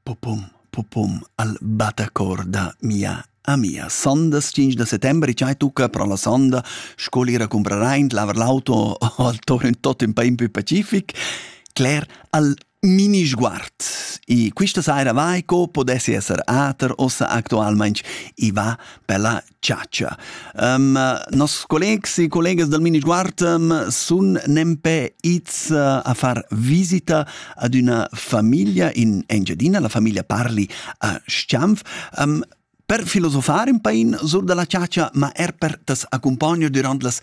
Popum, popum al battacor da mia amia. Sondas 5 da settembre, c'hai tucca pro la sonda, scolira comprarà in lavar l'auto al torn tot in pain più pacific. Claire al mini sguard. E questa saira vai co podessi esser ater ossa actualmente. I va per la chatscha. Um, nos collegs e collegas dal Minisguard um, sun nempe its uh, a far visita ad una famiglia in Engiadina, la famiglia parli a Schianf. Um, per filosofar un pain sur da la chatscha, ma er per tas accompagnar durant las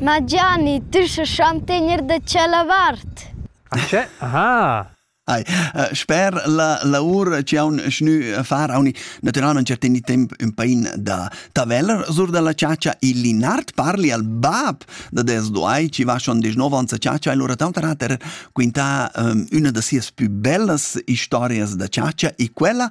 Ma Gianni, tü sast schon tegner da tschella vart. Che? Aha. Ai, sper la lavur chi haun gnü far hauni natüralmaing certaini temp ün pain da taveller sur da la chatscha. Il Linard parli al bap da des duai chi va schon desch nov ans a chatscha e lura taunt hat er quintà üna da sias pü bellas istorias da chatscha e quella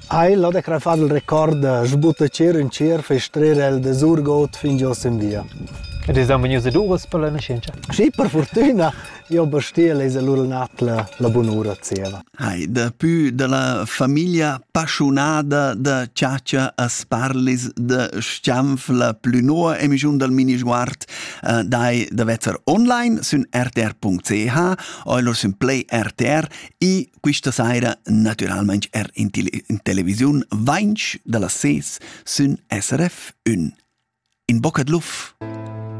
Ei l'ho da crafar il record da sbutta tschera in tschera fai strer el da surgot fin giò sin via. Ed es dan vegnius ed uras per la nascenza? Sì, per fortüna. Io bastia lesa lur nat la, la bunura zieva. Hai, dapü da la famiglia pasciunada da Ciacia a Sparlis da Schanf la plü noa emischun dal minisguard uh, dai da vezzer online sün rtr.ch o lur sün play rtr i Quista saira, natüralmaing er in, tele in televisiun, vainch da las ses sün SRF 1. In bocca d'luf!